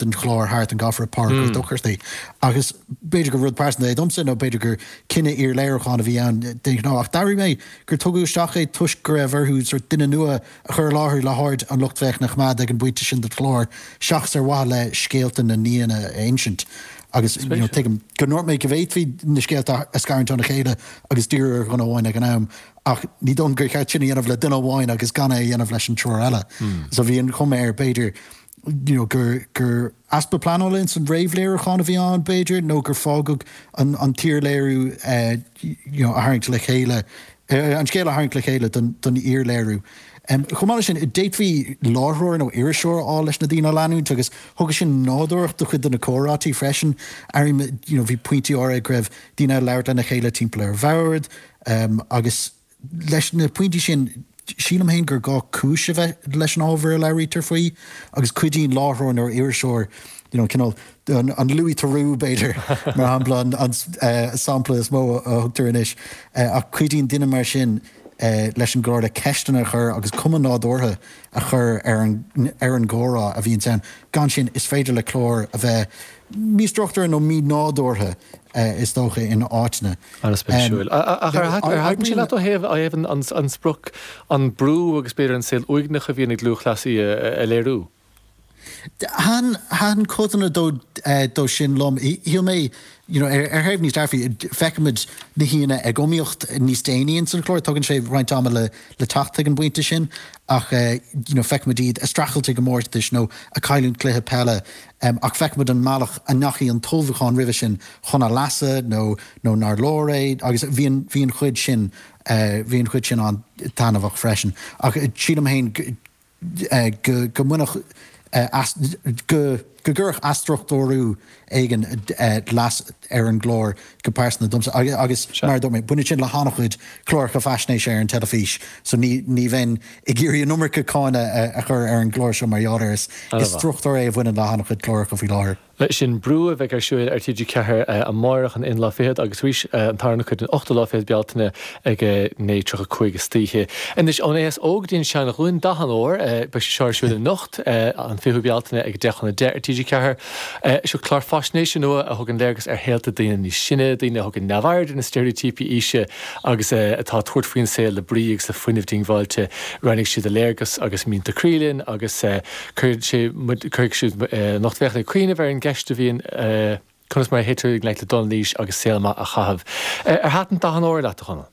den chlár Hearth and Gofraidh Páirc Ghort Dochairtaí agus b'fhéidir gur rud pearsanta é domsa nó b'fhéidir gur cinneadh iar-léiriúcháin a bhí ann de ghnáth ach d'airigh mé gur tugadh isteach é toisc go raibh orthu sórt duine nua a chur i láthair le haird an lucht féachana a choimeád ag an bpointe sin den chlár seachas ar mhaithe le scéalta na n-aíonna a insint agus tuigim go ndúirt mé go bhféadfaí na scéalta a scarúint óna chéile agus díriú ar dhuine amháin ag an am ach ní dóigh liom gur cheart sin a dhéanamh le duine amháin agus gan é a dhéanamh leis an triúr eile so bhí an chuma air b'fhéidir gur easpa pleanála ins an réamhléiriúchán a bhí ann, b'fhéidir, nó gur fágadh an t-iarléiriú a tharraingt le chéile, an scéal a tharraingt le chéile don iarléiriú. Chomh maith leis sin, d'fhéadfaí láithreoir nó iriseoir a fháil leis na daoine a leanúint agus thugadh sin nádúrthacht do chuid de na comhráití freisin. Airím, bhí pointí áirithe go raibh daoine ag labhairt lena chéile timpeall ar bhord agus. Leis na pointí sin, sílim féin gur gá cúis a bheith leis an ábhar a labhraítear faoi agus cuidíonn láithreoir nó iriseoir, you know, cineál an Louis Theroux, b'fhéidir, mar shampla, an sampla is mó a thugtar anois, ach cuidíonn duine mar sin leis an gclár le ceisteanna a chur agus cuma nádúrtha a chur ar an gcomhrá a bhíonns ann. Gan sin, is féidir le cláir a bheith místruchtúrtha nó mínádúrtha is dócha in áiteanna. An-spéisiúil. Ach ar thaitin sé leat ó thaobh an sprioc, an brú agus b'fhéidir an saol uaigneach a bhíonn ag lúthchleasaí a léiriú? Thaitin codanna de sin liom. Shíl mé, you know, ar thaobh níos dearfaí, feicimid na haíonna ag iomaíocht níos déanaí ins an chlár, tugann sé roinnt ama le teacht chuig an bpointe sin, ach, you know, feicimid iad a' streachailt i gcomórtais nó a' cailliúint cluiche peile, ach feicimid an mbealach a ndeachaigh an t-ullmhúchán roimhe sin chun a leasa nó, nó nár leor é agus bhí an, bhí an chuid sin, bhí an chuid sin an-taitneamhach freisin. Ach sílim féin go. go mbainfeadh go gcuirfeadh athstruchtúrú éigin leas ar an gclár go pearsanta domsa agus mar a dúirt mé, baineann sin le han-chuid cláracha faisnéise ar an teilifís so ní bheinn ag iarraidh an iomarca cáineadh a chur ar an gclár seo mar gheall air. Is struchtúr é a bhaineann le han-chuid cláracha faoi láthair. Leis sin, Brú a bheidh ar siúl ar TG4 amárach an aon lá fichead agus arís an tarna cuid an ochtú lá fichead Bealtaine ag 9:35 istoíche. Anois ón aos óg go dtí an seanghlúin, Dath an Óir, beidh sé seo ar siúl anocht, an 20ú Bealtaine ag 10 chun a deich ar TG4. Seo clár faisnéise nua a thugann léargas ar shaolta daoine níos sine, daoine a thugann neamhaird ar na steiréitíopaí aoise agus atá ag tabhairt faoin saol le brí agus le fuinneamh diongbháilte. Roinnfidh siad a léargas agus mianta croí linn agus. Cuirfidh sé muid, cuirfidh siad an lucht féachana ag cuimhneamh ar an gceist a bhíonn, conas mar a théitear i ngleic le dul in aois agus saol maith a chaitheamh. Ar thaitin Dath an Óir leat, a Chonaill?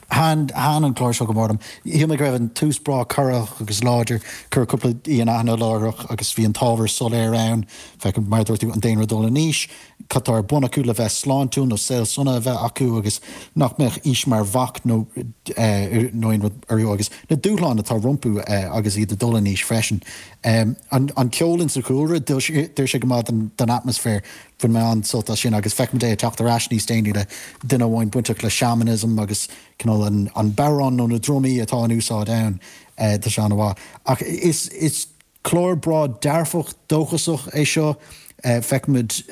Thaitin, thaitin an clár seo go mór liom. Shíl mé go raibh an tús breá corraitheach agus láidir. Cuireadh cúpla aoi in aithne láithreach agus bhí an t-ábhar soiléir ann, feiceann, mar a dúirt tú, an daonra ag dul in aois. cad tá ar bun acu le bheith sláintiúil nó saol sona a bheith acu agus nach mbeadh aois mar bhac nó aon rud orthu agus na dúshláin atá rompu agus iad ag dul in aois freisin. An ceol insa chúlra, d'oir sé go maith don atmaisféar. Bhain mé an-sult as sin agus feicim é ag teacht ar ais níos déanaí le duine amháin bainteach le seamanism agus cineál an bodhrán nó na drumaí atá in úsáid ann, sea an-mhaith. Ach is. Clár breá dearfach dóchasach é seo. Feicimid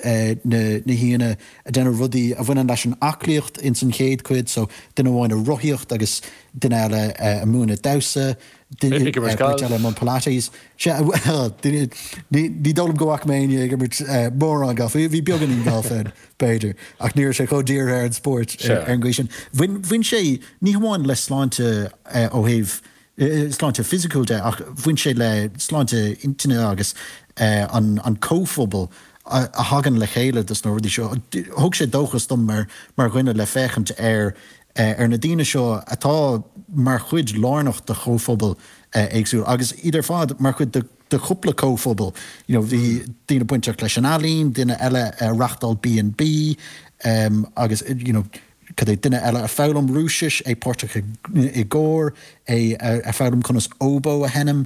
na haíonna ag déanamh rudaí a bhaineann leis an aclaíocht ins an chéad chuid so, duine amháin ag rothaíocht agus duine eile ag múineadh damhsa, beirt eile i mbun Pilates. Ní dóigh liom go bhfaca mé éinne ag imirt mórán gailf, bhí beagáinín gailf ann b'fhéidir ach ní raibh sé chomh dírithe ar an spórt ar an gcaoi sin. Bhain sé, ní hamháin le sláinte ó thaobh sláinte fisiciúil de, ach bhain sé le sláinte intinne agus an comhphobal a thagann le chéile dos na rudaí seo. Thug sé dóchas dom mar dhuine le féachaint ar na daoine seo atá mar chuid lárnach de chomhphobail éagsúla agus iad ar fad mar chuid de chúpla comhphobal, you know bhí daoine bainteach leis an ealaín, duine eile ag reáchtáil B and B agus you know. cad é duine eile ag foghlaim Rúisis, é páirteach i gcór, é ag foghlaim conas óbó a sheinm,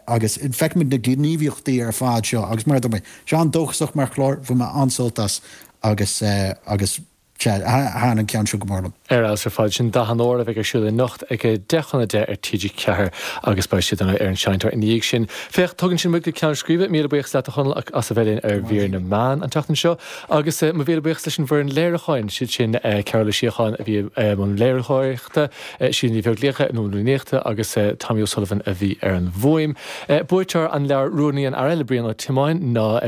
agus feicimid na gníomhaíochtaí ar fad seo agus mar a dúirt mé, sea an-dóchasach mar chlár, bhain mé an-sult as agus agus sea, thaitin an ceann seo go mór liom. Ar fheabhas ar fad. Sin Dath an Óir a bheidh ar siúl anocht ag a deich chun a deich ar TG4 agus beidh sé ar an seinnteoir ina dhiaidh sin. Féach, tugann sin muid go ceann scríbe. Míle buíochas leat, a Chonaill, as a bheith linn ar Mhír na Meán an tseachtain seo. Agus mo mhíle buíochas leis an bhfoireann léiriúcháin, siad sin Cearbhall Ó Síocháin a bhí i mbun léiritheoireachta, Síle Ní Bheaglaoich ag comhordú líníochta agus Tommy O'Sullivan a bhí ar an bhfuaim. Buaiteoir an leabhair Rún an Fhir Eile le Brian Ó Tiomáin, ná.